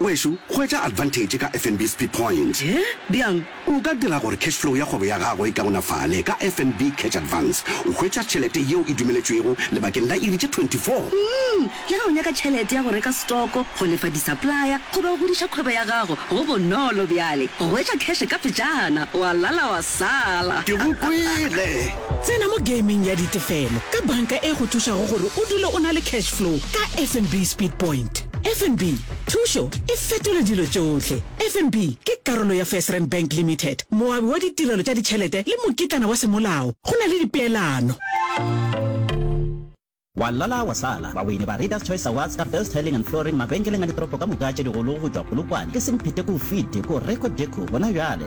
Ngwešu, hwetša advantage ka FNB Speed Point. Hye? Bjang? O ka dira gore cash flow ya kgwebo ya gago e kaonafale ka FNB Cash Advance. O hwetša tšhelete yeo e dumeletšwego lebakeng la iri tše 24. Umm, le ge o nyaka tšhelete ya go reka stoko, go lefa di-supplier goba go godiša kgwebo ya gago, go bonolo bjale go hwetša cash ka pejana, wa lala wa sala. Ke go kwele! Tsena mo gaming ya ditefelo ka banka e go thušago gore o dule o na le cash flow ka FNB Speed Point. FNB, Thušo e fetola dilo tšohle. FNB ke karolo ya FirstRand Bank Limited, moabi wa ditirelo tša ditšhelete le mokitlana wa semolao. Go na le dipeelano. Wa lala wa sala! Baweini ba Readers Choice Awards ka Best Tiling and Flooring mabenkeleng a ditoropo ka moka tše digolo go tšwa Polokwane, ke Semphete, Koufite, Koreko Deco gona bjale.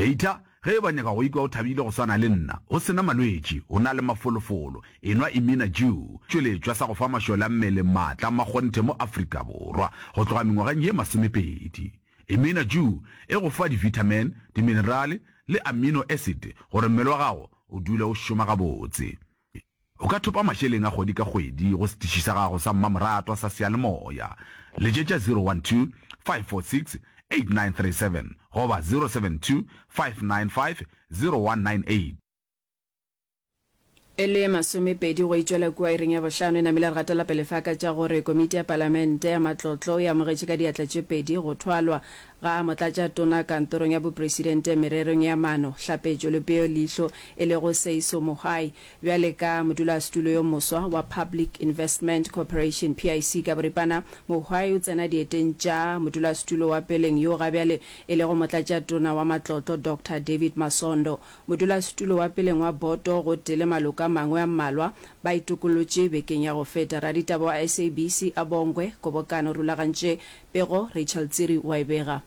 Eita ge eba o nyaka go ikwa o thabile go swana le nna, o se na malwetši, o na le mafolofolo, enwa Imina Jew, tšweletšwa sa go fa mašole a mmele maatla a makgonthe mo Afrika Borwa go tloga mengwageng ye masomepedi. Imina Jew e go fa divithamene, diminerale le amino acid gore mmele wa gago o dule o šoma gabotse. O ka thopa mašeleng a kgwedi ka kgwedi go setiši sa gago sa mmamoratwa sa seyalemoya. Letšetša 012 546 8937 goba 072 595 0198. E le masomepedi go e tšwela kua ireng ya bohlano e namile re gatela pele fa ka tša gore Komiti ya Palamente ya Matlotlo e amogetše ka diatla tše pedi go thwalwa Ga a Motlatšatona Kantorong ya Bopresidente Mererong ya Maano, Hlapetšo le Peo Leihlo, e lego Seiso Mogae, bjale ka modulasetulo yo moswa wa Public Investment Corporation, PIC, ka boripana, Mogae o tsena dieteng tša modulasetulo wa peleng yo ga bjale e lego Motlatšatona wa Matlotlo, Doctor David Masondo. Modulasetulo wa peleng wa boto gotee le maloko a mangwe a mmalwa ba itokollotše bekeng ya go feta. Raditaba wa SABC a Bongwe Kgobokano rulagantše Pego, Rachel Tsiri wa e bega.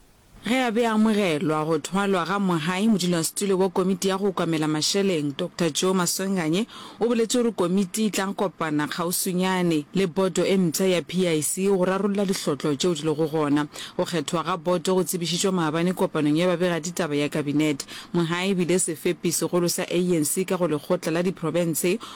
Ge a be a amogelwa go thwalwa ga Mohae, modulasetulo wa komiti ya go okamela mašeleng, Doctor Joe Maswenganye o boletše gore komiti e tla kopana kgauswinyane le boto e mpsha ya PIC go rarolla dihlotlo tšeo di lego gona. Go kgethwa ga boto go tsebišitšwe maabane kopanong ya babegaditaba ya Kabinete. Mohae e bile sefepi segolo sa ANC ka go lekgotla la diprofense